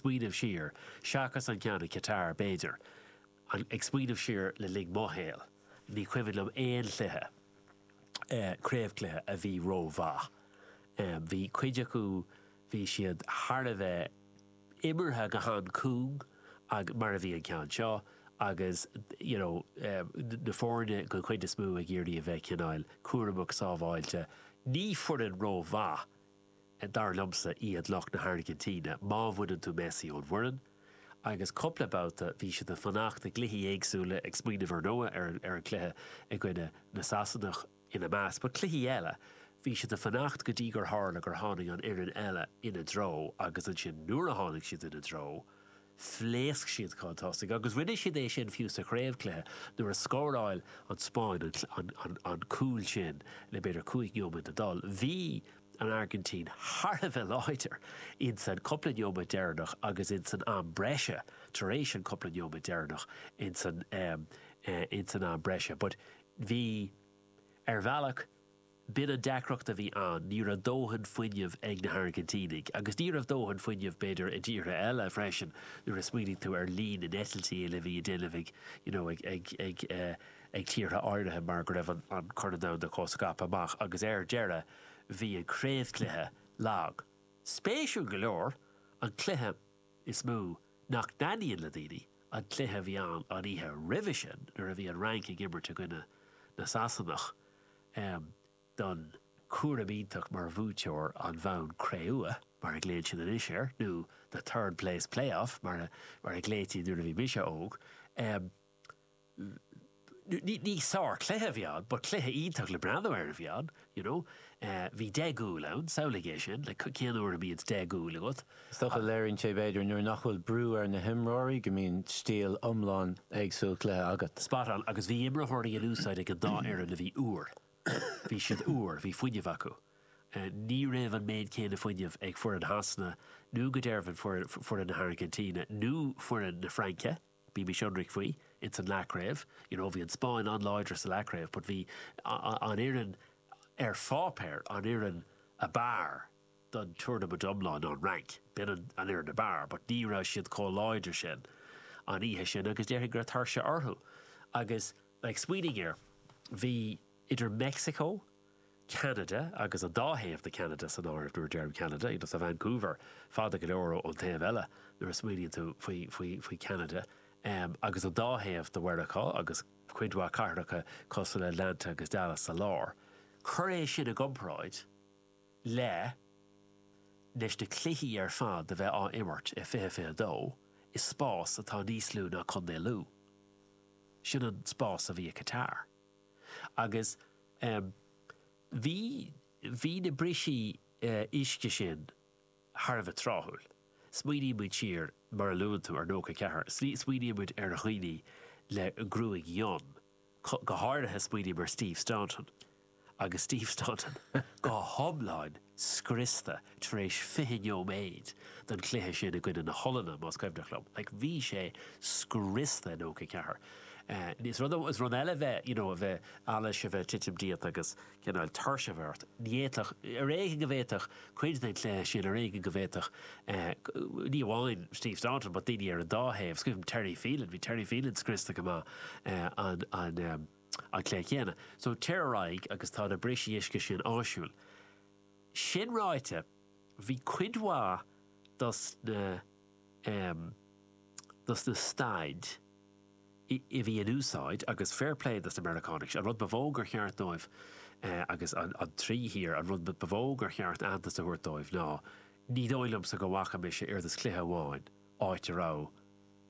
smaoineamh siar, seachas an ceann a ceathair, b'fhéidir, an, ag smaoineamh siar le linn mo shaoil, ní cuimhin liom aon chluiche, eh, craobhchluiche a bhí rómhaith. Em, bhí cuid acu, bhí siad thar a bheith imeartha go han-chúng, mar a bhí an ceann seo, agus, you know, em, na foirne den chuid is mó ag iarraidh a bheith cineál cúramach, sábháilte. Ní foireann rómhaith dar liomsa, iad lucht na hAirgintíne, má bhaineann tú Messi ón bhfoireann, agus cupla babhta bhí siad ag fanacht i gcluichí éagsúla, ag smaoineamh ar ndóigh ar an, ar an cluiche i gcoinne na Sasanach ina measc, but cluichí eile, bhí siad ag fanacht go dtí gur tharla gur tháinig an fhoireann eile ina dtreo agus ansin nuair a tháinig siad ina dtreo, Phléasc siad chun tosaigh agus rinne siad é sin fiú sa chraobhchluiche nuair a scóráil an Spáinn an cúl sin le b'fhéidir cúig neomat le dhul. Bhí an Airgintín thar a bheith láidir insan cupla neomat deireanach agus insan am breise, tar éis an cupla neomat deireanach insan am breise but bhí ar bhealach, B'in an deacracht a bhí ann, ní raibh dóthain fuinnimh ag na hAirgintínigh. Agus ní raibh dóthain fuinnimh, b'fhéidir, i dtíortha eile freisin, nuair a smaoinigh tú ar líon na n-eitiltí uile a bhí á ndéanamh ag, you know, ag, ag, ag eh, ag tíortha áirithe mar go raibh an, an Corn Domhanda chomh scaipthe amach agus ar deireadh bhí an craobhchluiche lag. Spéisiúil go leor, an cluiche is mó nach dtaitníonn le daoine, an cluiche a bhí ann an oíche roimhe sin nuair a bhí an Fhrainc ag imirt i gcoinne na Sasanach, Em, don chúram iontach mar bhuaiteoir an bhonn cré-umha, mar a ghlaonn siad anois air, nó the third place playoff, mar a, mar a ghlaoití nuair a bhí mise óg. Em, ní, ní sárchluiche a bhí ann, but cluiche iontach le breathnú air a bhí ann, you know. Eh, bhí deich gcúl ann, samhlaigh é sin, like, cén uair a mbíonns deich gcúl agat? Is dócha go léiríonn sé, b'fhéidir, nuair nach bhfuil brú ar na himreoirí, go mbíonn stíl iomlán éagsúil cluiche agat. Spot on. Agus bhí imreoirí in úsáid ag an dá fhoireann a bhí úr. Bhí siad úr, bhí fuinneamh acu. Ní raibh an méid céanna fuinneamh ag foireann Shasana nó go dearfa foireann na hAirgintíne nó foireann na Fraince, bímis ionraic faoi, ins an leathchraobh. You know, bhí an Spáinn an-láidir sa leathchraobh but bhí an fhoireann ar pháipéar, an fhoireann ab fhearr, don tournament iomlán an Fhrainc, b'in an fhoireann ab fhearr, but ní raibh siad chomh láidir sin an oíche sin agus déarfainn go raibh tuirse orthu agus like smaoinigh air, bhí idir Meicsiceo, Ceanada agus an dá thaobh de Cheanada san áireamh nuair a deirim Ceanada, you know tá Vancouver fada go leor ón taobh eile nuair a smaoiníonn tú faoi, faoi, faoi Cheanada em agus an dá thaobh de Mheiriceá agus cuid mhaith cathracha cosúil le Atlanta agus Dallas sa lár, cuir é sin i gcomparáid. le leis na cluichí ar fad a bheith á imirt i 2022 i spás atá níos lú ná Contae Lú. Sin an spás a bhí i Qatar. Agus, em, bhí, bhí na brisí, eh, uisce sin thar a bheith tráthúil. Smaoiníonn muid siar, mar a luann tú, ar nóca a ceathair, smaoiníonn muid ar dhaoine le gruaig fhionn, go háirithe smaoiním ar Steve Staunton agus Steve Staunton go hiomlán scriosta tar éis fiche nóiméad den chluiche sin i gcoinne na hOllainne, más cuimhneach liom. Like, bhí sé scriosta i nócha a ceathair. Is rud eile bheith, you know, a bheith, allas, a bheith titim díot agus cineál tuirse a bheith ort, ní fhéadfadh, ar éigean go bhféadfadh cuid den chluiche sin, ar éigean go bhféadfadh, ní amháin Steve Staunton, but daoine ar an dá thaobh, scríobh Terry Phelan, bhí Terry Phelan scriosta go maith in an cluiche chéanna. So tar ar aghaidh agus tá na brisí uisce sin áisiúil. Sin ráite, bhí cuid mhaith dos na dos na staid, a bhí in úsáid agus fair play dos na Meiriceánaigh, an rud ba mhó gur cheart dóibh agus an trí thír, an rud ba mhó gur cheart aitheantas a thabhairt dóibh ná, ní dóigh liomsa go bhfaca mise oiread is cluiche amháin áit a raibh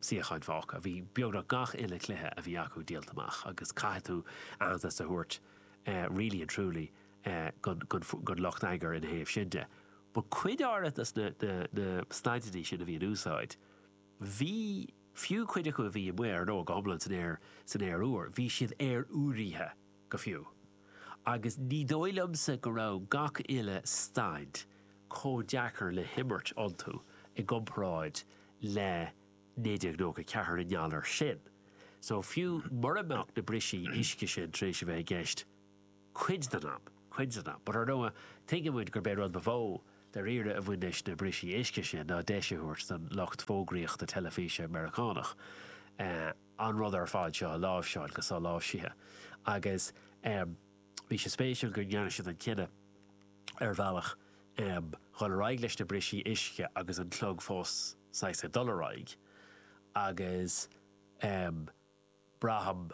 suíocháin fágtha, bhí beagnach gach uile chluiche a bhí acu díolta amach agus caithfidh tú aitheantas a thabhairt really and truly don lucht eagair ina thaobh sin de but cuid áirithe dos na staideanna sin a bhí in úsáid, Bhí, fiú cuid acu a bhí amuigh nó go hiomlán san aer úr, bhí siad aeroirithe go fiú. Agus ní dóigh liomsa go raibh gach uile staid chomh deacair le himirt iontu i gcomparáid le 1994 i ngeall air sin. So, fiú mura mbeadh na brisí uisce sin tar éis a bheith i gceist, Cuid den am. Cuid den am. But, ar ndóigh, tuigeann muid gurb é rud ba mhó, dairíre, a bhain leis na brisí uisce sin ná deis a thabhairt don lucht fógraíochta teilifíse Meiriceánach an rud ar fad seo a láimhseáil go soláimhsithe. Agus bhí sé spéisiúil go ndearna siad an cinneadh, ar bhealach, dhul ar aghaidh leis na brisí uisce agus an clog fós saghas ag dul ar aghaidh. Agus, braithim,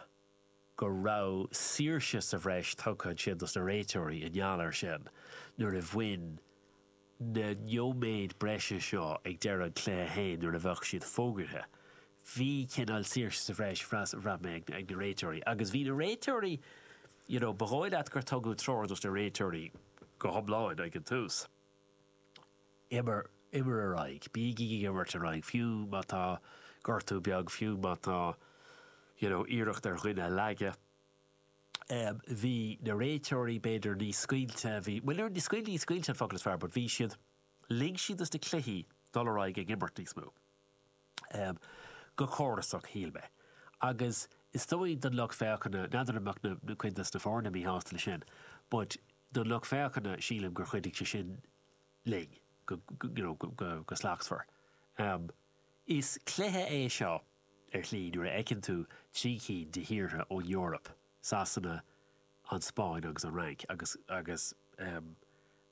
go raibh saoirse sa bhreis tugtha ansin dos na réiteoirí i ngeall air sin nuair a bhain na neoméid breise seo ag deireadh an cluiche féin nuair a bheadh siad fógartha. Bhí cineál saoirse sa bhreis bhraith mé ag na réiteoirí agus bhí na réiteoirí you know ba dhóigh leat gur tugadh treoir dos na réiteoirí go hiomlán ag an tús. Imir ar aghaidh. Bígí ag imirt ar aghaidh, fiú má tá gortú beag, fiú má tá you know iarracht ar dhuine a leagan. Bhí na réiteoirí b'fhéidir níos scaoilte, bhí, bhuel níor, scaoilte, ní scaoilte an focal is fearr but bhí siad, lig siad dos na cluichí dul ar aghaidh ag imirt níos mó. go córasach, shíl mé, agus is dóigh don lucht féachana, n'fheadar b'fhéidir go mbeadh cuid de na foirne míshásta leis sin, but don lucht féachana, sílim gur chuidigh sé sin leis, go, you know, go slachtmhar. Is cluiche é seo, ar shlí, nuair a fheiceann tú trí cinn de thíortha ón Eoraip, Sasana, an Spáinn agus an Fhrainc, agus agus em.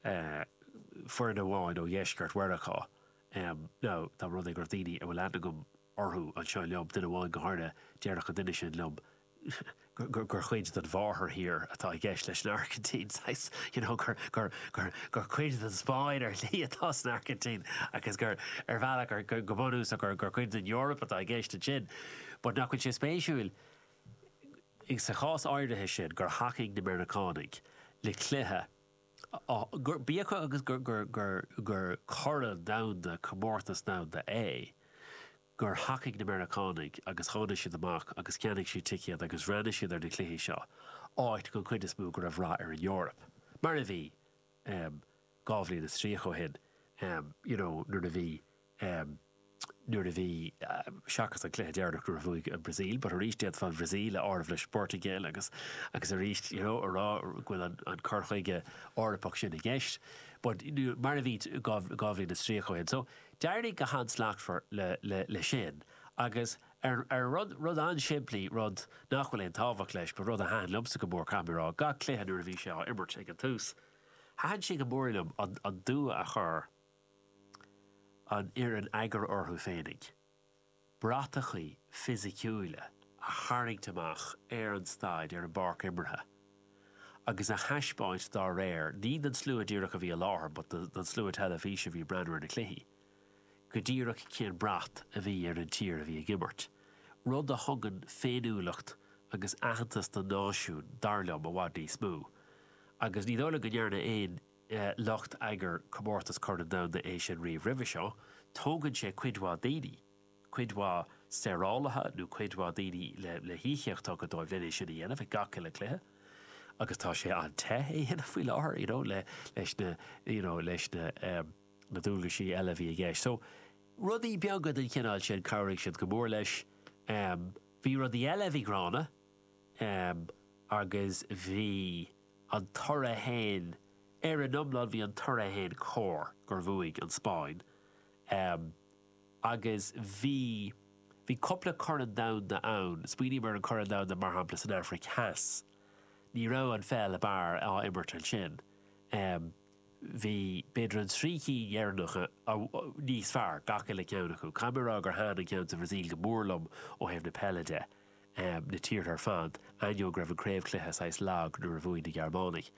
eh. foireann amháin ó dheisceart Mheiriceá. em. now tá b'fhéidir go bhfuil daoine a bhfuil aithne agam orthu ag éisteacht liom, duine amháin go háirithe, déarfadh an duine sin liom gur. gur cuid den mháthairthír atá i gceist leis an Airgintín, saghas, you know, gur. gur. gur. gur cuid den Spáinn ar shlí atá san Airgintín agus gur. ar bhealach gur. go. go bunúsach gur. gur cuid den Eoraip atá i gceist ansin but nach bhfuil sé spéisiúil go. sa chás áirithe sin gur thacaigh na Meiriceánaigh le cluiche gur, bíodh agus gur, gur, gur, gur corn domhanda, comórtas domhanda é, gur thacaigh na Meiriceánaigh agus tháinig siad amach agus cheannaigh siad ticéid agus bhreathnaigh siad ar na cluichí seo, áit, den chuid is mó, go raibh rath ar an Eoraip. Mar a bhí. dhá bhliain is tríocha ó shin, you know, nuair a bhí, nuair a bhí, seachas an cluiche deireanach nuair a bhuaigh an Bhrasaíl, but arís d'fhéadfá an Bhrasaíl a áireamh leis an bPortaingéil agus, agus arís, you know, a rá go bhfuil an, an cur chuige Eorpach sin i gceist, but mar a bhí dhá, dhá bhliain is tríocha ó shin. So d'éirigh go han-slachtmhar le, le, le sin agus. Ar rud, rud an-simplí, rud nach bhfuil aon tábhacht leis, but rud a thaitin liomsa go mór, caithfidh mé a rá, gach cluiche nuair a bhí sé á imirt ag an tús, thaitin sé go mór liom an, an dua a chuir an fhoireann eagair orthu féinig, bratachaí fisiciúila a tharraingt amach ar an staid, ar an bpáirc imeartha agus a thaispeáint dá réir, ní don slua díreach a bhí i láthair but don slua teilifíse a bhí ag breathnú ar na cluichí. go díreach cén brat a bhí ar an tír a bhí ag imirt, rud a thugann féiniúlacht agus aitheantas don náisiún, dar liom, i bhfad níos mó. Agus ní dóigh liom go ndearna aon lucht eagair comórtas Corn Domhanda é sin riamh roimhe seo. Tógann sé cuid mhaith daoine, cuid mhaith saorálaithe nó cuid mhaith daoine le híocaíocht a thabhairt dóibh len é sin a dhéanamh ag gach uile cluiche, agus tá sé an-te é a dhéanamh faoi láthair, you know, leis na, you know, leis na. na dualgaisí eile a bhí i gceist. So, rudaí beaga den chineál sin, chabhraigh siad go mór leis. Bhí rudaí eile a bhí gránna agus bhí an toradh fhéin, ar an iomlán, bhí an toradh fhéin cóir, gur bhuaigh an Spáinn agus bhí, bhí cupla corn domhanda ann, smaoiním ar an corn domhanda mar shampla san Afraic Theas, ní raibh an pheil thar barr á imirt ansin. Bhí, b'fhéidir, na trí cinn dheireanacha níos fearr, gach uile cheann acu. Caithfidh mé a rá gur thaitin an ceann sa Bhrasaíl go mór liom ó thaobh na peile de, na tíortha ar fad, ainneoin go raibh an craobhchluiche saghas lag nuair a bhuaigh na Gearmánaigh.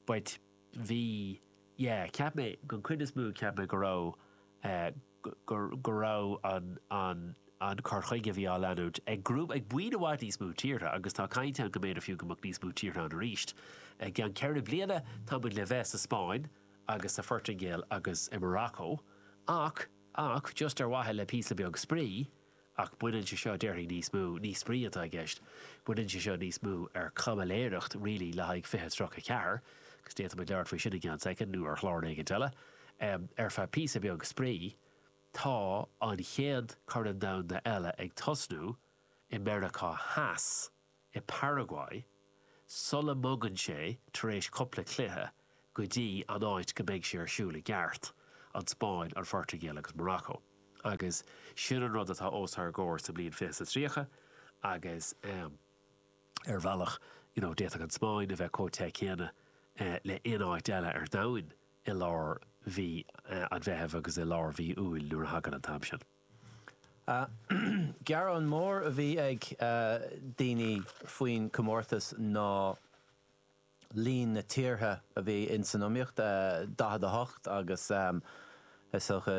But, bhí, yeah, cheap mé, den chuid is mó, cheap mé go raibh. go raibh an cur chuige a bhí á leanúint ag grúpa, ag buíon i bhfad níos mó tíortha, agus tá caint ann go mb'fhéidir fiú amháin go mbeadh níos mó tíortha ann arís i gceann ceithre bliana, tá muid le bheith sa Spáinn agus sa Phortaingéil agus i Morocco, ach, ach, just ar mhaithe le píosa beag spraoi, Ach baineann sé seo, déarfainn, níos mó, ní spraoi atá i gceist, baineann sé seo níos mó ar chaimiléireacht really le haghaidh 2034, agus d'fhéadfadh muid labhairt faoi sin i gceann soicind nó ar chlár éigin eile. Ar feadh píosa beag spraoi, tá an chéad Chorn Domhanda eile ag tosnú i Meiriceá Theas. i bParaguay, sula mbogann sé, tar éis cupla cluiche, go dtí an áit go mbeidh sé ar siúl i gceart, an Spáinn, an Phortaingéil agus Morocco. Agus sin an rud atá os ár gcomhair sa mbliain fiche is a tríocha agus ar bhealach, you know, d'fhéadfadh an Spáinn a bheith comh te céanna le aon áit eile ar domhan i lár mhí an Mheithimh agus i lár mhí Iúil nuair a thagann an t-am sin. Gearán mór a bhí ag daoine faoin chomórtas ná líon na tíortha a bhí ins san iomaíocht, 48, agus is dócha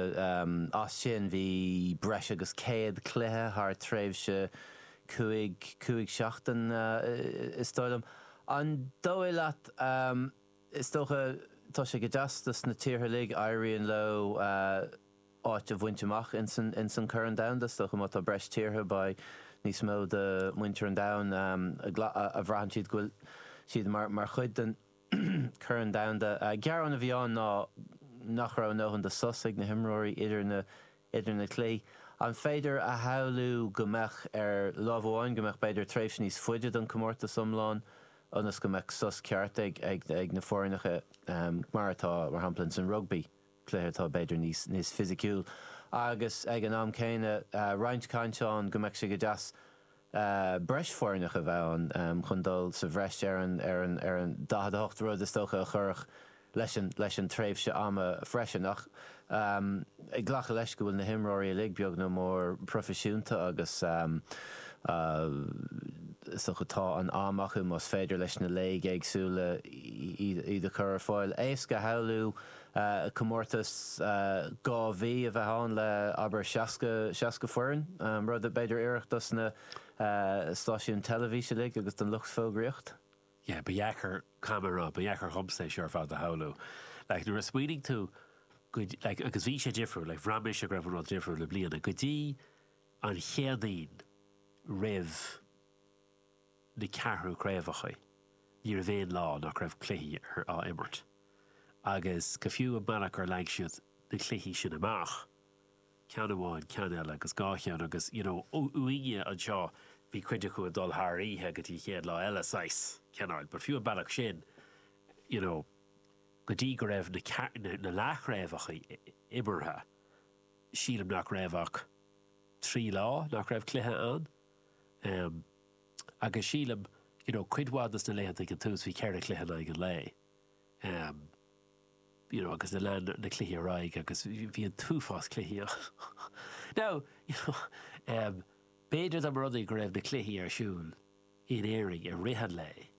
as sin bhí breis agus 100 cluiche thar tréimhse cúig, cúig seachtain is dóigh liom. An dóigh leat, is dócha, tá sé go deas dos na tíortha uilig, éiríonn leo, áit a bhaint amach ins an Corn Domhanda. Is dócha má tá breis tíortha, beidh níos mó de muintir an domhain a bhraitheann siad go bhfuil siad mar chuid den Chorn Domhanda. Gearán a bhí ann ná nach raibh a ndóthain de sos ag na himreoirí idir na cluichí. An féidir a shamhlú go mbeadh, ar láimh amháin, go mbeadh b'fhéidir tréimhse níos faide don comórtas iomlán ionas go mbeadh sos ceart ag na foirneacha, mar atá, mar shampla, ins an rugbaí? cluiche atá b'fhéidir níos fisiciúil agus ag an am céanna roinnt caint ann go mbeadh sé go deas breis foirneach a bheith ann chun dul sa bhreis ar an 48, rud is dócha a chuirfeadh leis an tréimhse ama freisin. Ach ag glacadh leis go bhfuil na himreoirí uilig beag nó mór proifisiúnta agus is dócha tá an am acu más féidir leis na léigeanna éagsúla iad a chur ar fáil, éasca a shamhlú comórtas dhá mhí a bheith ann le, abair, 60, 60 foireann, rud a b'fhéidir a d'oirfeadh dos na stáisiúin teilifís uilig agus don lucht fógraíocht. Yeah, ba dheacair, ba dheacair, ba dheacair dhomsa é seo ar fad a shamhlú. Like, nuair a smaoinigh tú go, like, agus bhí sé difriúil, like, bhraith mise go raibh an rud difriúil i mbliana, go dtí an Chéadaoin roimh na ceathrú craobhacha, ní raibh aon lá nach raibh cluichí á imirt, agus go fiú an bealach ar leag siad na cluichí sin amach, ceann amháin, ceann eile, agus dhá cheann, agus you know, uainne anseo, bhí cuid acu ag dul thar oíche go dtí an chéad lá eile saghas, cineáil, but fiú an bealach sin, you know, go dtí go raibh na, na leathchraobhacha imeartha, sílim nach raibh ach trí lá nach raibh cluiche ann. em agus sílim you know cuid mhaith de na laethanta ag an tús bhí ceithre chluiche in aghaidh an lae em you know agus lean na cluichí ar aghaidh agus bhí an t-uafás cluichí ann now you know em b'fhéidir dá mba rud é go raibh na cluichí ar siúl in Éirinn i rith an lae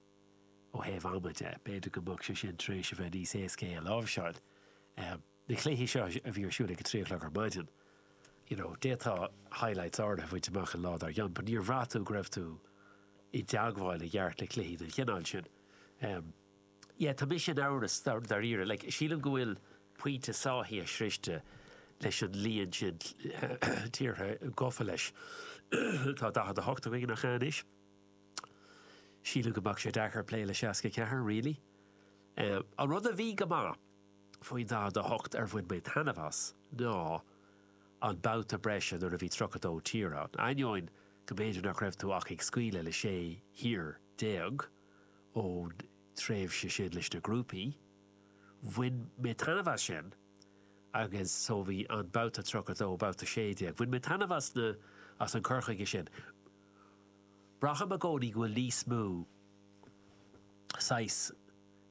ó thaobh ama de b'fhéidir go mbeadh sé sin tar éis a bheith níos éasca é a láimhseáil em. na cluichí seo a bhí ar siúl ag a trí a chlog ar maidin you know d'fhéadfá highlights áirithe a bhaint amach an lá dár gcionn but níor bhraith tú go raibh tú i dteagmháil i gceart le cluichí den chineál sin em yeah tá mise in amhras dáiríre like sílim go bhfuil pointe sáithithe sroichte leis an líon sin tíortha gafa leis tá 48 againn nach ea anois sílim go mbeadh sé deacair plé le 64 really em an rud a bhí go maith faoi 48 ar bhain mé taitneamh as ná an babhta breise nuair a bhí 32 tír ann, ainneoin go mb'fhéidir nach raibh tú ach ag scaoileadh le 16 thír ón tréimhse sin leis na grúpaí. Bhain mé taitneamh as sin agus so bhí an babhta 32, babhta 16, bhain mé taitneamh as na, as an cur chuige sin. Braithim i gcónaí go bhfuil níos mó saghas,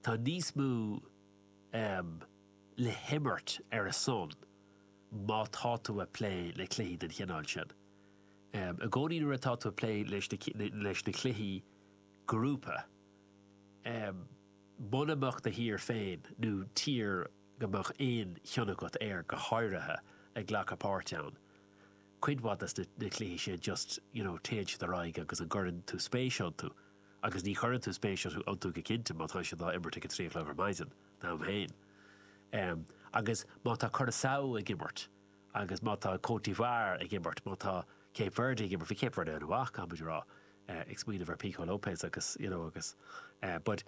Tá níos mó, em, le himirt ar a son má tá tú a' plé le cluichí den chineál sin. Em, i gcónaí nuair atá tú a' plé leis na, leis na cluichí grúpa, em, mura mbeadh do thír féin nó tír go mbeadh aon chion agat air go háirithe ag glacadh páirte ann, cuid mhaith de na cluichí sin just, you know, téann siad ar aghaidh agus an gcuireann tú spéis iontu? Agus ní chuireann tú spéis iontu go cinnte má tá siad á imirt ag a trí a chlog ar maidin, dom féin. Em. agus má tá Curaçao ag imirt agus má tá Côte d'Ivoire ag imirt, má tá Cape Verde ag imirt, bhí Cape Verde an-mhaith, caithfidh muid a rá, eh, ag smaoineamh ar Pico Lopes agus, you know, agus, eh, but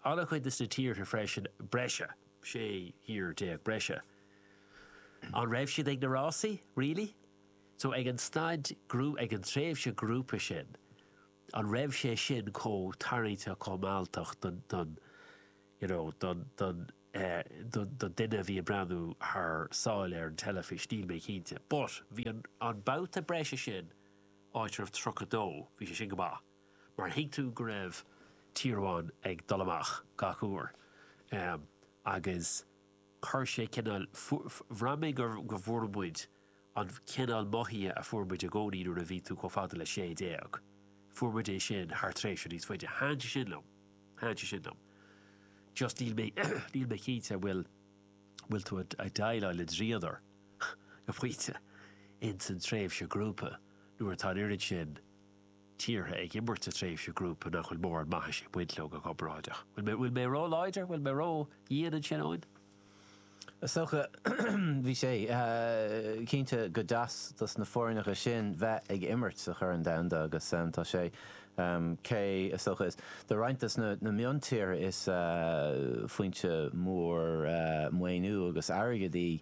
an-chuid de na tíortha freisin breise, sé thír déag breise. An raibh siad ag na rásaí, really? So ag an stad grú, ag an tréimhse grúpa sin, an raibh sé sin chomh tarraingteach, chomh mealltach don, don, you know, don, don, eh, don, don duine a bhí ag breathnú thar sáile ar an teilifís, níl mé cinnte. But, bhí an, an babhta breise sin, áit a raibh tríocha dó, bhí sé sin go maith, mar thuig tú go raibh tír amháin ag dul amach gach uair. Em, agus chuir sé cineál, fuair, bhraith mé gur, go bhfuair muid An cineál mothaithe a fuair muid i gcónaí nuair a bhí tú chomh fada le sé déag, fuair muid é sin thar tréimhse níos faide. Thaitin sé sin liom. Thaitin sé sin liom. Just níl mé, níl mé cinnte an bhfuil, an bhfuil tú ag déileáil le dríodar go pointe ins an tréimhse grúpa nuair atá an oiread sin tíortha ag imirt sa tréimhse grúpa nach bhfuil mórán maithis ag baint leo go comparáideach. An bhfuil mé ró-láidir, an bhfuil mé ró-dhian ansin, Eoin? Is dócha, bhí sé, cinnte go deas dos na foirneacha sin bheith ag imirt sa Chorn Domhanda agus tá sé, cé, is dócha, is, do roinnt dos na miontíortha is foinse mhór maoiniú agus airgid í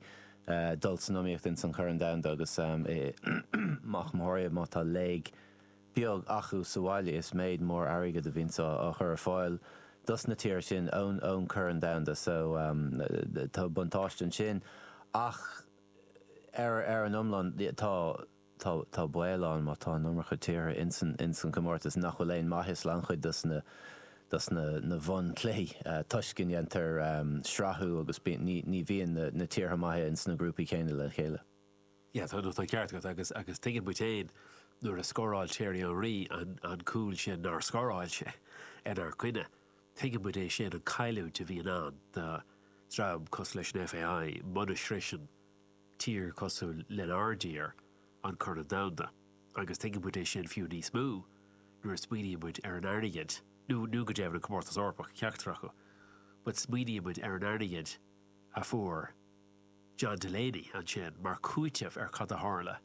dul san iomaíocht ins an Chorn Domhanda agus i, go theoiriciúil má tá léig, beag acu sa bhaile is méid mór airgid a bhíonns á chur ar fáil dos na tíortha sin ón ón Corn Domhanda so tá buntáiste ansin ach ar ar an iomlán tá tá tá baol ann má tá an iomarca tíortha ins an ins an gcomórtas nach bhfuil aon maitheas le lán-chuid dos na dos na na bhun-cluichí toisc go ndéantar srathú agus bíonn ní ní bhíonn na na tíortha maithe ins na grúpaí céanna le chéile. Yeah, tá an ceart agat agus agus tuigeann muid féin nuair a scóráil Thierry Henry an an cúl sin nár scóráil sé inár gcoinne. Tuigeann muid é sin, an cailliúint a bhíonn ann do dhream cosúil leis an FAI muna shroiseann tír cosúil lenár dtír an Corn Domhanda agus tuigeann muid é sin fiú níos mó nuair a smaoiníonn muid ar an airgead nó nó go deimhin an Comórtas Eorpach, ceachtar acu, but smaoiníonn muid ar an airgead a fuair. John Delaney ansin mar chúiteamh ar cad a tharla,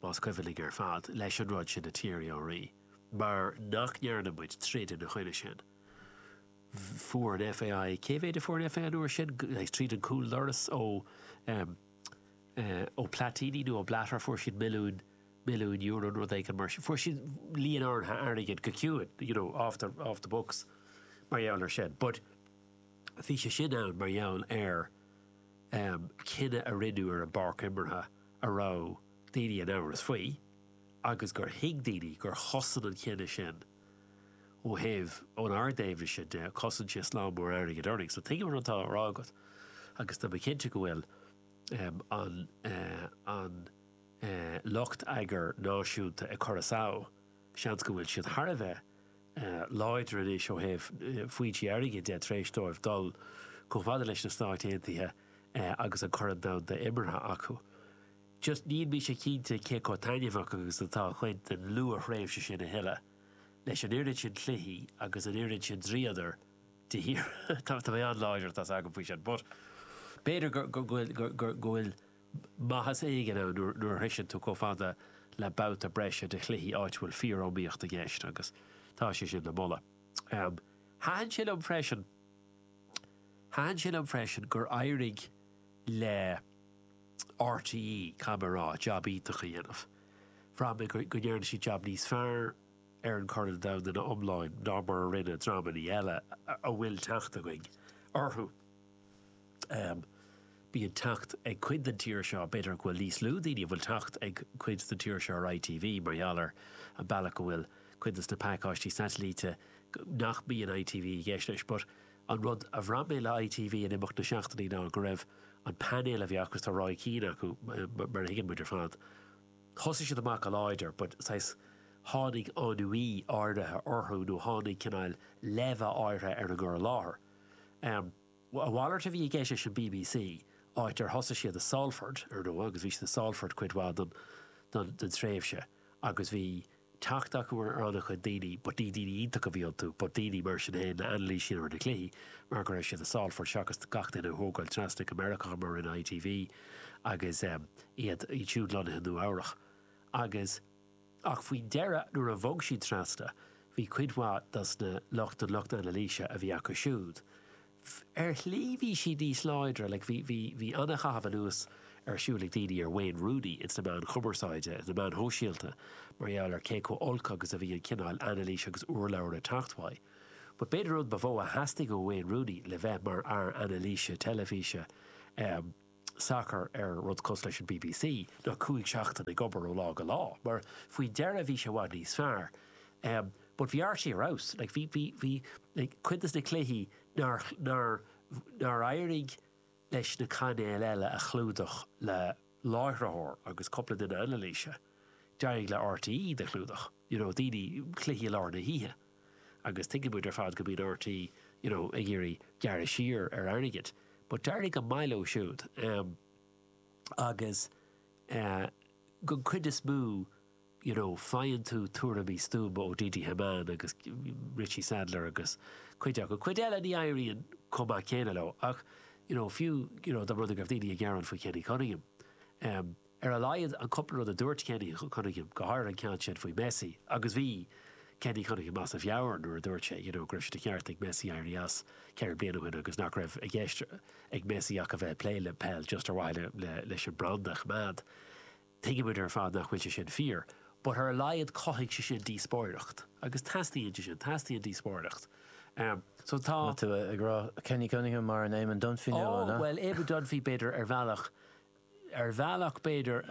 más cuimhin linn ar fad, leis an rud sin, an Thierry Henry, mar nach ndearna muid troid ina choinne sin. Fuair an FAI, cé mhéid a fuair an FAI an uair sin? tríd an cúldoras ó Platini nó ó Blatter, fuair siad milliúin, milliúin euro nó rud éigin mar sin, fuair siad líon áirithe airgid go ciúin, you know, off the, off the books mar gheall ar sin. But. Bhí sé sin ann mar gheall ar cinneadh a rinneadh ar an bpáirc imeartha a raibh daoine in amhras faoi agus gur thuig daoine gur chosain an cinneadh sin ó thaobh, ón ár dtaobhna de, cosain sé slám mór airgid orainn. So tuigim a bhfuil ag rá agat agus tá mé cinnte go bhfuil an lucht eagair náisiúnta ag cur a samh. Seans go bhfuil siad thar a bheith láidir anois ó thaobh foinsí airgid de tar éis dóibh dul chomh fada leis na Stáit Aontaithe agus an Corn Domhanda imeartha acu. Just níl mise cinnte cé chomh taitneamhach agus atá cuid den luath-thréimhse sin a thuilleadh, leis an oiread sin cluichí agus an oiread sin dríodar de shíor. Tá mé an-láidir atá 's agam faoi sin, but b'fhéidir go bhfuil. maitheas éigin ann nuair a shroicheann tú chomh fada le babhta breise de chluichí áit a bhfuil fíor-iomaíocht i gceist agus tá sé sin le moladh. Thaitin sé liom freisin, thaitin sé liom freisin gur éirigh le RTÉ, caithfidh mé a rá, jab iontach a dhéanamh. Bhraith mé go ndearna siad jab níos fearr ar an gCorn Domhanda ina iomláin ná mar a rinne dreamannaí eile a bhfuil teacht againn orthu. Bíonn teacht ag cuid den tír seo, b'fhéidir go bhfuil níos lú daoine a bhfuil teacht ag cuid den tír seo ar ITV mar gheall ar an bealach go bhfuil cuid de na pacáistí satailíte nach mbíonn ITV i gceist leis, but an rud a bhraith mé le ITV in imeacht na seachtainí ná go raibh an painéal a bhí acu, agus tá Roy Keane acu mar a thuigeann muid ar fad, thosaigh siad amach go láidir but saghas tháinig ennui áirithe orthu nó tháinig cineál leimhe áirithe ar an gcur i láthair. Em. A mhalairt a bhí i gceist leis an BBC, áit ar thosaigh siad i Salford, ar ndóigh, agus bhí siad i Salford cuid mhaith den, den, den tréimhse agus bhí teacht acu ar an-chuid daoine but ní daoine iontacha a bhí iontu, but daoine mar sin féin a d'anailísigh siad ar na cluichí mar go raibh siad i Salford seachas gach duine a thógáil trasna go Meiriceá mar a rinne ITV agus, em, iad, iad siúd lonnaithe i Nua Eabhrach agus. Ach faoi dheireadh nuair a bhog siad trasna bhí cuid mhaith dos na lucht an lucht anailíse a bhí acu siúd. Ar shlí bhí siad níos láidre, like bhí, bhí, bhí an-chaitheamh anuas ar siúl ag daoine ar Wayne Rooney ins na meáin chumarsáide, na meáin shóisialta mar gheall ar cé chomh olc agus a bhí an cineál anailís agus urlabhra ag teacht uaidh. But b'fhéidir an rud ba mhó a theastaigh ó Wayne Rooney le bheith mar fhear anailíse teilifíse, eh, sacar ar rud cosúil leis an bbc ná cúig seachtaine ag obair ó lá go lá mar faoi deireadh bhí sé i bhfad níos fearr but bhí RTÉ ar fheabhas like bhí bhí bhí like cuid dos na cluichí nár nár nár éirigh leis na cainéil eile a chlúdach le láithritheoir agus cúpla duine anailíse d'éirigh le RTÉ iad a chlúdach you know daoine cluichí i lár na hoíche agus tuigeann muid ar fad go mbíonn RTÉ, you know, ag iarraidh gearradh siar ar airgead, but d'éirigh go maith leo siúd, em, agus, eh, don chuid is mó, you know, faigheann tú tuairimí stuama ó Didi Hamann agus Richie Sadlier agus cuid acu, cuid eile ní éiríonn chomh maith céanna leo ach, you know, fiú, you know, dá mba rud é go raibh daoine ag gearán faoi Kenny Cunningham, em, Ar a laghad an cúpla rud a dúirt Kenny Cunningham, go háirithe an ceann sin faoi Messi, agus bhí Kenny Cunningham as a mheabhair nuair a dúirt sé you know go raibh sé de cheart ag Messi éirí as ceithre bliana ó shin agus nach raibh i gceist ag Messi ach a bheith ag plé le peil just ar mhaithe leis an branda a choimeád. Tuigeann muid ar fad nach bhfuil sé sin fíor but ar a laghad chothaigh sé sin díospóireacht agus teastaíonn sé sin, teastaíonn díospóireacht so tá. Tá tú ag rá Kenny Cunningham mar an Eamon Dunphy nua, an ea? Bhuel, Eamon Dunphy b'fhéidir ar bhealach ar bhealach b'fhéidir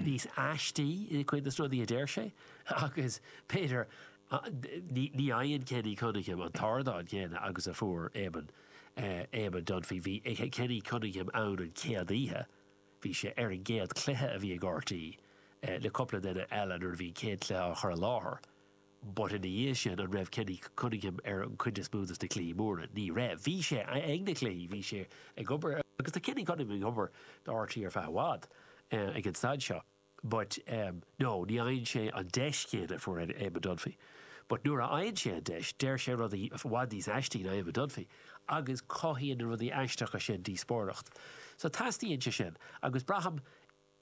níos aistí i gcuid de na rudaí a deir sé agus b'fhéidir ní fhaigheann Kenny Cunningham an t-ardán céanna agus a fuair Eamon, Eamon Dunphy. Bhí Kenny Cunningham ann an chéad oíche, bhí sé ar an gcéad chluiche a bhí ag RTÉ le cúpla duine eile nuair a bhí an chéad chluiche á chur i láthair. But ina dhiaidh sin, an raibh Kenny Cunningham ar an chuid is mó dos na cluichí móra? Ní raibh. Bhí sé ag na cluichí, bhí sé ag obair, agus tá Kenny Cunningham ag obair do RTÉ ar feadh i bhfad, ag an staid seo, but no, ní fhaigheann sé an deis chéanna a fuair Eamon Dunphy. But nuair a fhaigheann sé an deis, deir sé rudaí i bhfad níos aistí ná Eamon Dunphy, agus cothaíonn na rudaí aisteacha sin díospóireacht. So teastaíonn sé sin, agus braithim,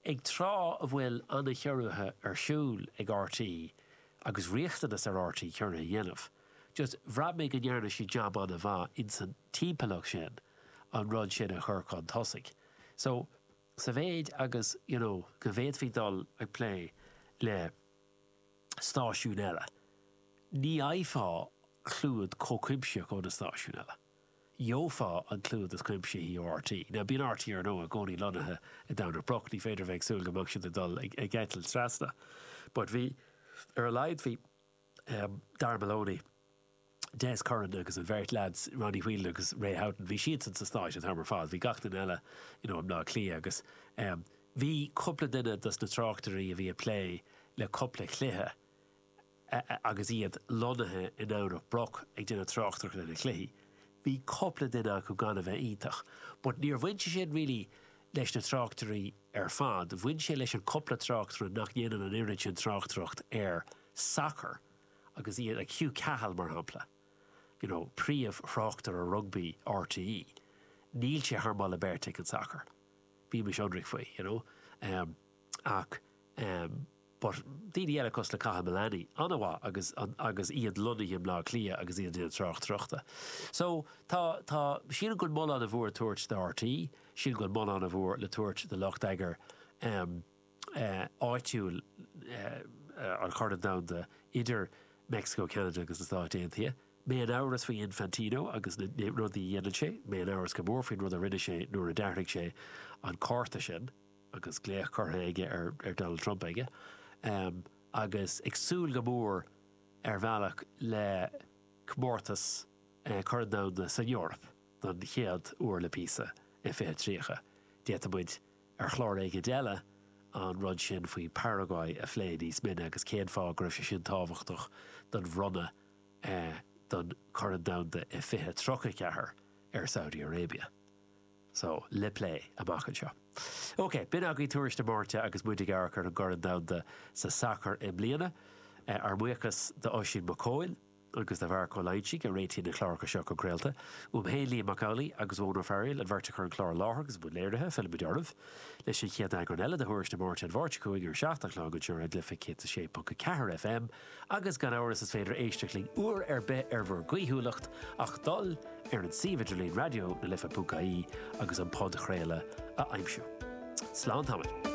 Ag tráth a bhfuil an-chiorruithe ar siúl ag RTÉ agus riachtanas ar RTÉ ciorruithe a dhéanamh, just bhraith mé go ndearna siad jab an-mhaith insan timpeallacht sin an rud sin a chur chun tosaigh. So, sa mhéid agus, you know, go bhféadfaí dul ag plé le stáisiúin eile, ní fhaighfeá clúad chomh cuimsitheach ó na stáisiúin eile. gheofá an clúdach is cuimsithí ó RTÉ. Now, bíonn RTÉ, ar ndóigh, i gcónaí lonnaithe i nDomhnach Broc, ní féidir a bheith ag súil go mbeadh siad ag dul ag eitilt trasna. But bhí, ar a laghad bhí em Darragh Maloney, Des Curran agus an bheirt leaids, Ronnie Whelan agus Ray Houghton, bhí siadsan sna Stáit an t-am ar fad, bhí gach duine eile you know i mBleá Cliath agus em bhí cúpla duine dos na tráchtairí a bhí ag plé le cúpla cluiche agus iad lonnaithe i nDomhnach Broc ag déanamh tráchtaireachta ar na cluichí, bhí cupla duine acu gan a bheith iontach, but níor bhain sé sin really leis na tráchtairí ar fad, bhain sé leis an cupla tráchtaire nach ndéanann an oiread sin tráchtaireacht ar sacar agus iad, Hugh Cahill mar shampla, you know príomh thráchtaire rugbaí RTÉ, níl sé thar moladh beirte ag an sacar, bímis ionraic faoi, you know, ach. But daoine eile cosúil le Cathal Mullaney an-mhaith agus, agus iad lonnaithe i mBleá Cliath agus iad ag déanamh tráchtaireachta. So, tá, tá, sílim go bhfuil moladh ana mhór le tabhairt do RTÉ, sílim go bhfuil moladh ana mhór le tabhairt do lucht eagair ehm, eh, áitiúil eh, an Chorn Domhanda idir Meicsiceo, Ceanada agus na Stáit Aontaithe. Mé in amhras faoi Infantino agus na, na rudaí a dhéanann sé, mé in amhras go mór faoin rud a rinne sé nuair a d'athraigh sé an cárta sin. agus glaoch curtha ag Donald Trump aige, agus ag súil go mór ar bhealach le comórtas Chorn Domhanda san Eoraip don chéad uair le píosa, i 2030. D'fhéadfadh muid ar chlár éicint eile an rud sin faoi Paraguay a phlé níos mine agus cén fáth go raibh sé sin tábhachtach don bhronnadh don Chorn Domhanda i 2034 ar Saudi Arabia. So, le plé, amach anseo. OK, b'in againn tuairisc na Máirte agus muid ag amharc ar an gCorn Domhanda sa Sacar i mbliana. Ár mbuíochas do Oisín Mac Cóil agus do Mharc Ó Loingsigh a réitigh na cláracha seo chun craolta. Uaim féin, Liam Mac Amhlaigh agus Eoghan Ó Fearghaíl, an bheirt a chur an clár i láthair agus i mbun léirithe, fillfimid oraibh leis an chéad eagrán eile de thuairisc na Máirte an Mháirt seo chugainn ar a seacht a chlog anseo ar Raidió na Life 106.4 FM. Agus gan amhras is féidir éisteacht linn uair ar bith ar bhur gcaoithiúlacht ach dul ar an suíomh idirlín Raidió na Life ponc ie agus an podchraoladh a aimsiú. Slán tamaill.